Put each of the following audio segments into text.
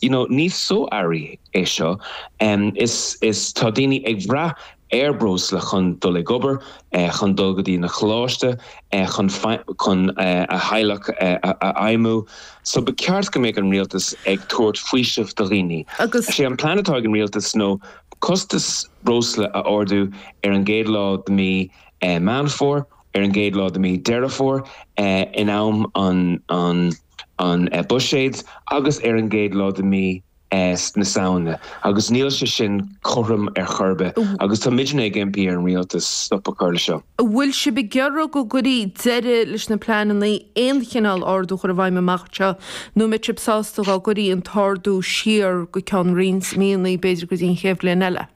you know ní so-earraí é seo is is tá daoine ag bhraith ar breosla chun dul ag obair chun dul go dtí na coláiste chun chun a theaghlach a fheidhmiú so ba cheart go mbeidh an rialtas ag tabhairt faoiseamh do dhaoine agus sé an plean atá ag an rialtas ná costas breosla a ardú ar an gcéad lá de mí Meán Fómhair ar an gcéad lá de mí Deireadh Fómhair in am an an an Buiséid agus ar an gcéad lá de mhí na Samhna agus níl sé sin cothrom ar chor ar bith agus táimidne ag impí ar an Rialtas stop a chur leis seo. An bhfuil sibh ag iarraidh go gcuirfí deireadh leis na pleananna aon chineál ardú a chur i bhfeidhm amach anseo nó an mbeadh sibh sásta dá gcuirí an t-ardú siar go ceann roinnt míonna, b'fhéidir go dtí an chéad bhliain eile?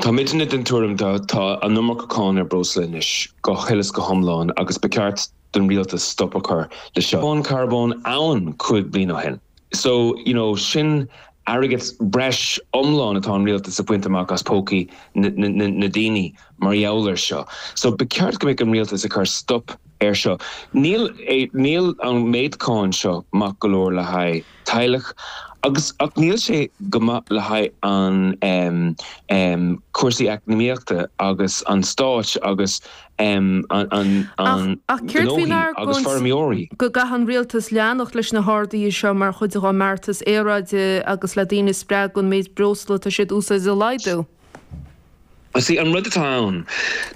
Táimidne den tuairim tá an iomarca cáin ar breosla anois, go huile is go hiomlán, agus ba cheart don rialtas stop a chur le seo. Cáin charbóin amháin cúig bliain ó shin. So, you know, sin airgead breis iomlán atá an rialtas ag baint amach as pócaí na daoine mar gheall ar seo. So ba cheart go mbeadh an rialtas ag cur stop ar seo. Níl níl an méid cáin seo maith go leor le haghaidh. teaghlach agus ach níl sé go maith le haghaidh an cúrsaí eacnamaíochta agus an stáit agus an gnóthaí agus feirmeoirí. go gcaithfidh an rialtas leanacht leis na harduithe seo mar chuid dá mbeartas aeráide agus le daoine a spreagadh an méid breosla atá siad a úsáid a laghdú. Sé an rud atá ann,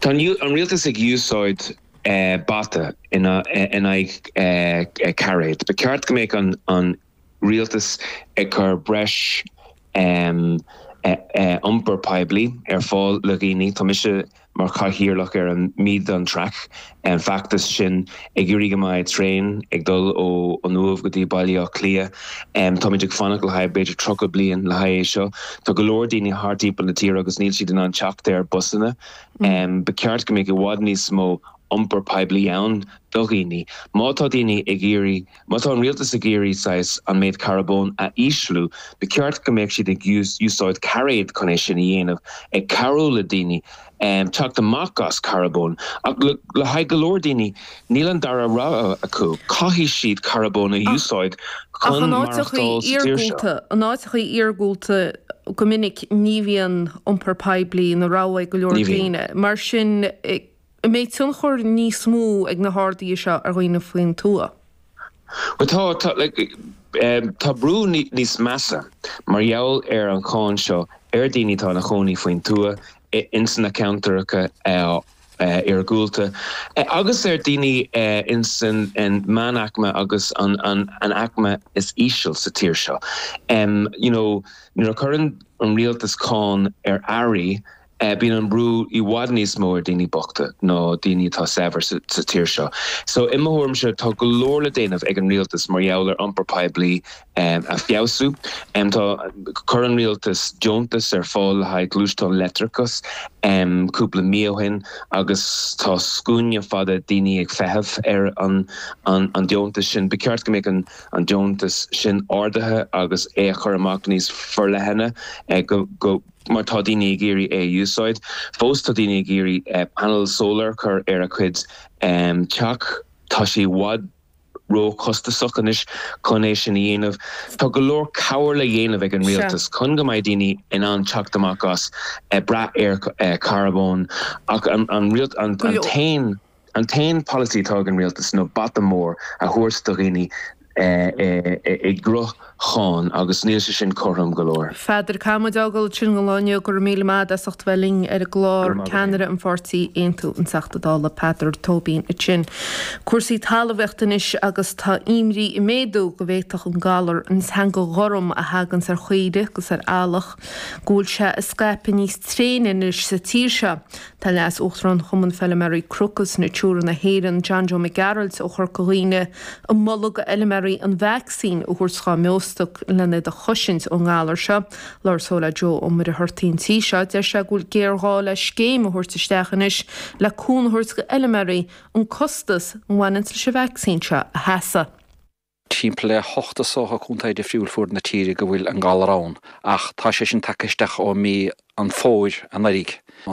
tá an rialtas ag úsáid. bata in aghaidh cairéid. Ba cheart go mbeadh an rialtas ag cur breis iompar poiblí ar fáil le dhaoine. Tá mise mar chathaoirleach ar an Meath on Track, an feachtas sin ag iarraidh go mbeadh traein ag dul ó an Uaimh go dtí Baile Átha Cliath. Táimid ag fanacht le haghaidh b'fhéidir 30 bliain le haghaidh é seo. Tá go leor daoine thart timpeall na tíre agus níl siad in ann teacht ar busanna. Ba cheart go mbeadh i bhfad níos mó iompar poiblí ann do dhaoine. Má tá daoine ag iarraidh, má tá an rialtas ag iarraidh saghas an méid carbóin a ísliú, ba cheart go mbeadh siad ag úsáid cairéad chun é sin a dhéanamh, ag cabhrú le daoine teacht amach as carbóin. Ach le haghaidh go leor daoine, Níl an dara rogha acu, caithfidh siad carbóin a úsáid chun maireachtáil sa tír seo. Ach in áiteachaí iargúlta go minic ní bhíonn iompar poiblí ina rogha ag go leor daoine. Mar sin an mbeadh tionchar níos mó ag na harduithe seo ar dhaoine faoin tuath? Bhuel tá. Tá brú níos measa mar gheall ar an cháin seo ar dhaoine atá ina gcónaí faoin tuath ins na ceantaracha iargúlta, agus ar daoine ins an meánaicme agus an aicme is íseal sa tír seo. You know, nuair a chuireann an rialtas cáin ar earraí, bíonn an brú i bhfad níos mó ar dhaoine bochta ná daoine atá saibhir sa tír seo. So, i mo thuairimse, tá go leor le déanamh ag an rialtas mar gheall ar iompar poiblí a feabhsú. Tá Chuir an rialtas deontas ar fáil le haghaidh gluaisteán leictreachas cúpla mí ó shin agus tá scuaine fada daoine ag feitheamh ar an deontas sin. Ba cheart go mbeadh an deontas sin ardaithe agus é a chur amach níos forleithne mar tá daoine ag iarraidh é a úsáid. Fós tá daoine ag iarraidh panel solar a chur ar a gcuid teach. Tá sé i bhfad. róchostasach anois chun é sin a dhéanamh. Tá go leor cabhair le dhéanamh ag an rialtas chun go mbeidh daoine in ann teacht amach as a brath ar charbón, ach an t-aon an t-aon pholasaí atá ag an rialtas ná bata mór a thabhairt do dhaoine i gcruth. Cháin, agus níl sé sin cothrom go leor. A Pheadair caithfidh muid a ghabháil chun Gailearaí, go raibh míle maith agat as ucht a bheith linn ar an gclár. Ceannaire an pháirtí Aontú, an Teachta Dála Peadar Tóibín ansin. Cúrsaí talmhaíochta anois agus tá imní ag méadú go bhféadfadh an galar, an Teanga Ghorm, a thaganns ar chaoirigh agus ar eallach, go bhfuil sé ag scaipeadh níos tréine anois sa tír seo. Tá Leas-Uachtarán Chumann Feilméaraí Cnoc is Natura na hÉireann, John Joe Mac Gearailt ó Chorca Dhuibhne, ag moladh go fheilméaraí an vacsaín a thabhairt dhá mbeostoc lena iad a chosaint ón ngalar seo. Labhair sé le Joe Ó Muircheartaigh an tí seo, deir sé go bhfuil géarghá le scéim a thabhairt isteach anois le cúnamh a thabhairt go fheilméaraí an costas a bhaineanns leis an vacsaín seo a sheasamh. Timpeall le hocht is dócha contae difriúil fuaid na tíre go bhfuil an galar ann, ach tá sé sin tagtha isteach ó mí an Fómhair anuraidh.